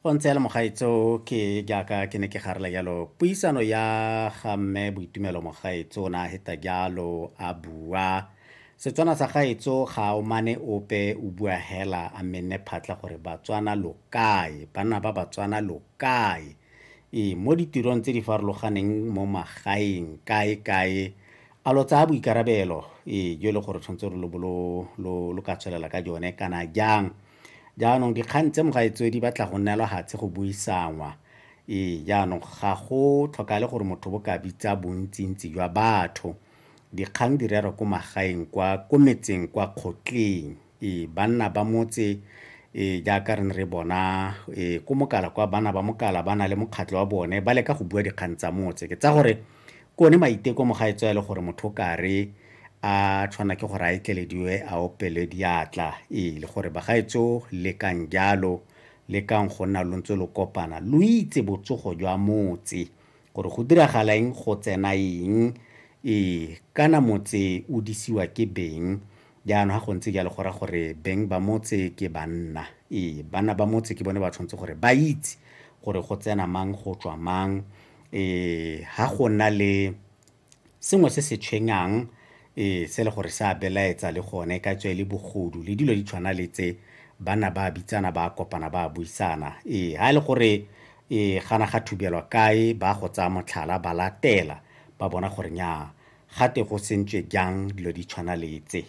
go ntse le mogaetso ke jaaka ke ne ke garela jalo puisano ya ga mme boitumelo mogaetso na heta jalo a bua setswana sa gaetso ga o mane ope o bua hela a menne phatla gore batswana lo kae banna ba batswana lo kae ee mo ditirong tse di farologaneng mo magaeng kae kae a lo tsaya boikarabelo ee jo e le gore tshwanetse re lo bo lo ka tswelela ka jone kana jang jaanong dikgang tse mogaetseo di batla go neelwa gatshe go buisanngwa ee jaanong ga go tlhokale gore motho bo ka bitsa bontsintsi jwa batho dikgang di rerwa ko magaeng kwa ko metseng kwa kgotleng ee banna ba motse ee jaaka re ne re bona ee ko mokala kwa bana ba mokala ba na le mokgatlho wa bone ba leka go bua dikgang tsa motse ke tsa gore Ke one maiteko mo ga e tswa e le gore motho o ka re a tshwana ke gore a etlelediwe a opelwe diatla. Ee, le gore bagaetsho lekang jalo, lekang go nna lo ntse lo kopana, lo itse botsogo jwa motse gore go diragala eng, go tsena eng, ee, kana motse o disiwa ke beng, Jaanong ga go ntse jalo go raya gore beng ba motse ke banna. Ee, banna ba motse ke bone ba tshwanetse gore ba itse gore go tsena mang go tswa mang. Ee, ga go na le sengwe se se tshwenyang ee se le gore sa belaetsa le gone ka tswe le bogodu le dilo di tshwana le tse bana ba bitsana ba kopana ba buisana ee ha le gore ee gana ga thubelwa kae ba go tsaya motlhala ba latela ba bona gore nya gate go sentswe jang dilo di tshwana le tse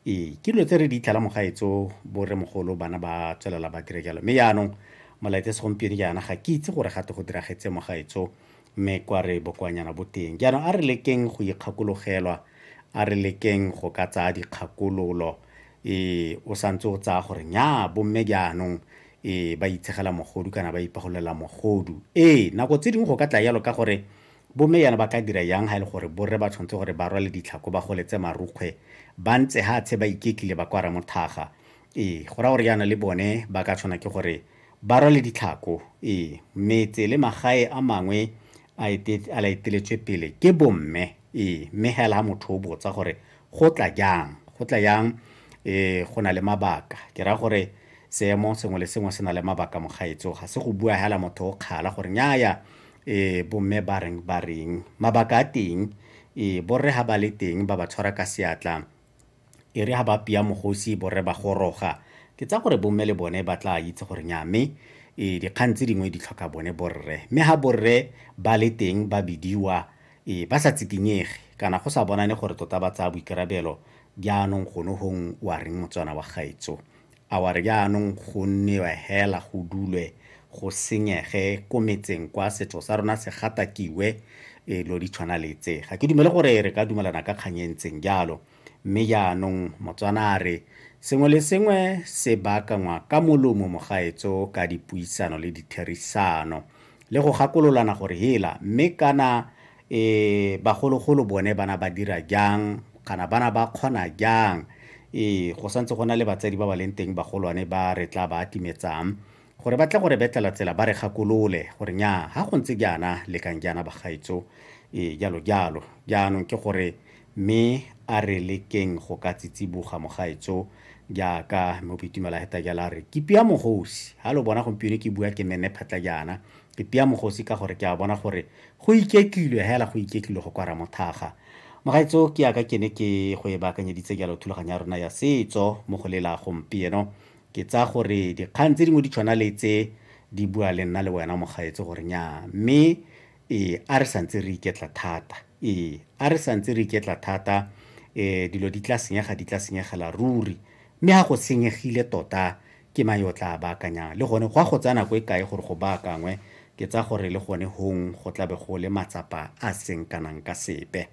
ee ke dilo tse re di itlhela mogaetso borre mogolo bana ba tswelela ba dire jalo mme yaanong molaetse segompieno jaana ga ke itse gore gate go diragetse mogaetso mme kwa re bokoanyana bo teng jaanong a re lekeng go ikgakologelwa a re lekeng go ka tsaya dikgakololo ee o santse o tsaya gore nya bomme jaanong ee ba itshegela mogodu kana ba ipagololela mogodu ee nako tse dingwe go ka tla yalo ka gore Bomme jaana ba ka dira jang ga e le gore borre ba tshwanetse gore ba rwale ditlhako, ba goletse marukgwe, ba ntse hatshe ba iketlile ba kwa Ramothaga? Ee, go raya gore jaana le bone ba ka tshwana ke gore ba rwale ditlhako. Ee, metse le magae a mangwe a a la eteletswe pele ke bomme. Ee, mme hela ha motho o botsa gore go tla jang, go tla jang ee go na le mabaka. Ke raya gore seemo sengwe le sengwe se na le mabaka mogaetso, ga se go bua hela motho o kgala gore nnyaya e bomme ba reng ba reng mabaka a teng e borre ha ba le teng ba ba tshwara ka seatla e re ha ba pia mogosi borre ba goroga ke tsa gore bomme le bone ba tla itse gore nya mme e dikgang tse dingwe di tlhoka bone borre mme ha borre ba le teng ba bidiwa e ba sa tsikinyege kana go sa bonane gore tota ba tsaya boikarabelo jaanong gone gong wa reng motswana wa gaetso A wa re jaanong go nnewe hela go dulwe go senyege ko metseng kwa setso sa rona se gatakiwe e lo di tshwana le tse. Ga ke dumele gore re ka dumelana ka kgang e ntseng jalo. Mme jaanong Motswana a re sengwe le sengwe se baakangwa ka molomo mogaetso ka dipuisano le ditherisano le go gakololana gore hela mme kana E, bagologolo bone ba na ba dira jang, kana ba na ba kgona jang? E, go santse go na le batsadi ba ba leng teng bagolwane ba re tla ba atimetsang, gore ba tle go re betlela tsela ba re gakolole, gore nyaa, ha go ntse jaana, lekang jaana bagaetsho, e, jalo jalo. Jaanong ke gore, Mme a re lekeng go ka tsitsiboga, mogaetsho, jaaka Mme Opitumela Heta jalo a re, Kipi ya Mogosi! Ha lo bona gompieno ke bua ke Menne Phatla jaana, Ke tia mogosi ka gore ke a bona gore go iketlilwe hela go iketlilwe go kwa Ramothaga. Mogaetso ke ya ka ke ne ke go e baakanyeditse jalo thulaganyo ya rona ya setso mo go lela gompieno. Ke tsaya gore dikgang tse dingwe di tshwana le tse di bua le nna le wena mogaetso gore nyaa mme ee a re santse re iketla thata ee a re santse re iketla thata um dilo di tla senyega di tla senyegela ruri mme ga go senyegile tota Ke mang yo o tlaa baakanyang? Le gone, go a go tsaya nako e kae gore go baakangwe? Ke tsaya gore le gone hong go tla be go le matsapa a a seng kanang ka sepe.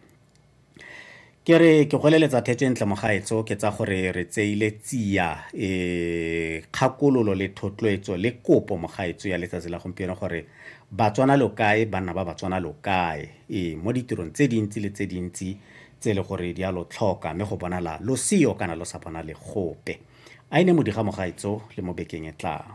Ke re ke go eleletsa thetso e ntle mogaetso, ke tsaya gore re tseile tsia e, kgakololo le thotloetso le kopo mogaetso ya letsatsi la gompieno gore Batswana lo kae, banna ba Batswana lo kae? Ee, mo ditirong tse dintsi le tse dintsi tse e le gore di a lo tlhoka mme go bonala lo seyo kana lo sa bonale gope. A e ne modi ga mogaetso le mo bekeng e tlang.